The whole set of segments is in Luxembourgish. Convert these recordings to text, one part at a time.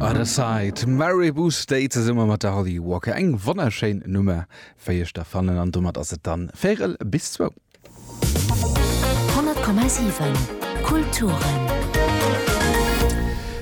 Other Side, Maribou State zesumme mat der Holly Walker. Eng wonnerschéin Nummer, wéi ech da fannen. An domat ass et dann véierel bis zwou. 100,7 Kulturen.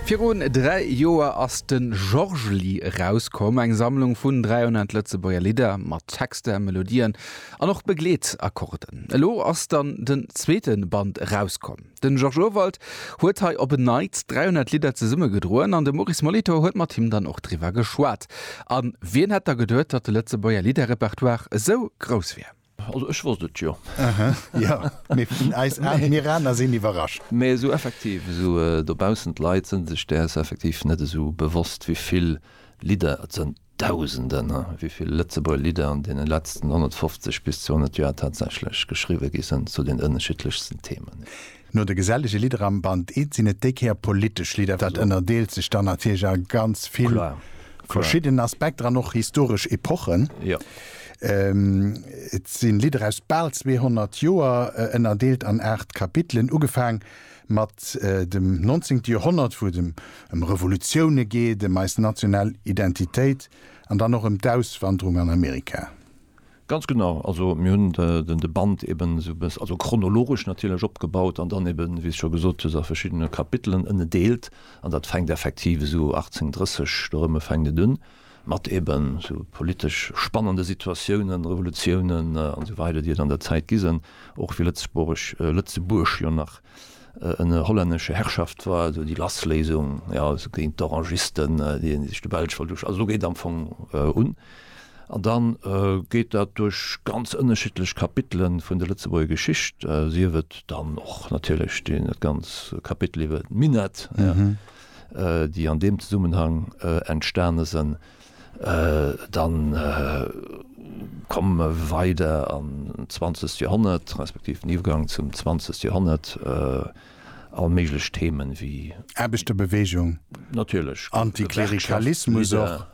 Virun dräi Joer ass de Georges-Lie erauskomm, eng Sammlung vun 300 Lëtzebuerger Lidder mat Texter, Melodien an och Begleetakkorden. Elo ass dann den zweete Band erauskomm. Den Georges Urwald huet hei op en Neits 300 Lidder zesumme gedroen an de Maurice Molitor huet mat him dann och driwwer geschwat. An wien hätt da geduet, datt de Lëtzebuerger Lidderrepertoire esou grouss wier? Also ech wosst et jo. Aha, jo, mee vun eis Aen, mir aner sinn iwwerrascht. Mee esou effektiv, esou dobaussen d'Leit sinn sech däers effektiv net esou bewosst, wéi vill Lidder et sënn. Dausenden, ha, wéi vill Lëtzebuerger Lidder an deene letzten 150 bis 200 Joer tatsächlech geschriwwe gi sënn zu den ënnerschiddlechsten Themen. No de gesellege Lidder am Band I sinn et déi Kéier politesch Lidder. Dat ënnerdeelt sech dann natierlech a ganz vill verschidden Aspekter an och historesch Epochen. Et si Lidder aus bal 200 Joer, ënnerdeelt an aacht Kapitelen, ugefaang Mat dem 19. Joerhonnert, wou et ëm Revolutioune geet, ëm eis national Identitéit an dann och ëm d'Auswanderung an Amerika. Ganz genau, also mir hunn de Band eben esou e bëss, also chronologesch natierlech, opgebaut an dann eben, wéi s scho gesot hues, a verschiddene Kapitelen ënnedeelt. An dat fänkt effektiv esou 1830 do erëm fänkt et un. mat eben sou politesch spannende Situatiounen, Revolutiounen an esou weider, déi et an der Zäit gi sen, och fir Lëtzebuerg, Lëtzebuerg jo nach ënner hollännescher Herrschaft war, also déi Lassléisung, jo, also géint d'Orangisten, déi sech de Belsch wollt usch, also do geet am Fong un, an da geet dat duerch ganz ënnerschiddlech Kapitele vun der Lëtzebuerger Geschicht, sief et dann och natierlech dat ganz Kapitel iwwert d'Minett, déi an deem Zesummenhang entstane sen, dann komme mer weider an d'zwanzegt Joerhonnert, respektiv den Iwwergang zum zwanzegt Joerhonnert, all méiglech Themen wéi. Aarbechterbewegung, Antiklerikalismus och, dat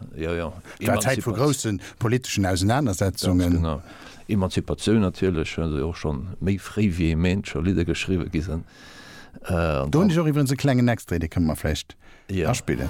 war d'Zäit vu grousse politeschen Ausenanersetzungen. Ganz genau. Emanzipatioun natierlech, well se och scho méi fréi wéi ee meent, scho Lidder geschriwwe gi sen. Do hunn ech och iwwerens e klengen Extrait, dee kënne mer vläicht aspillen.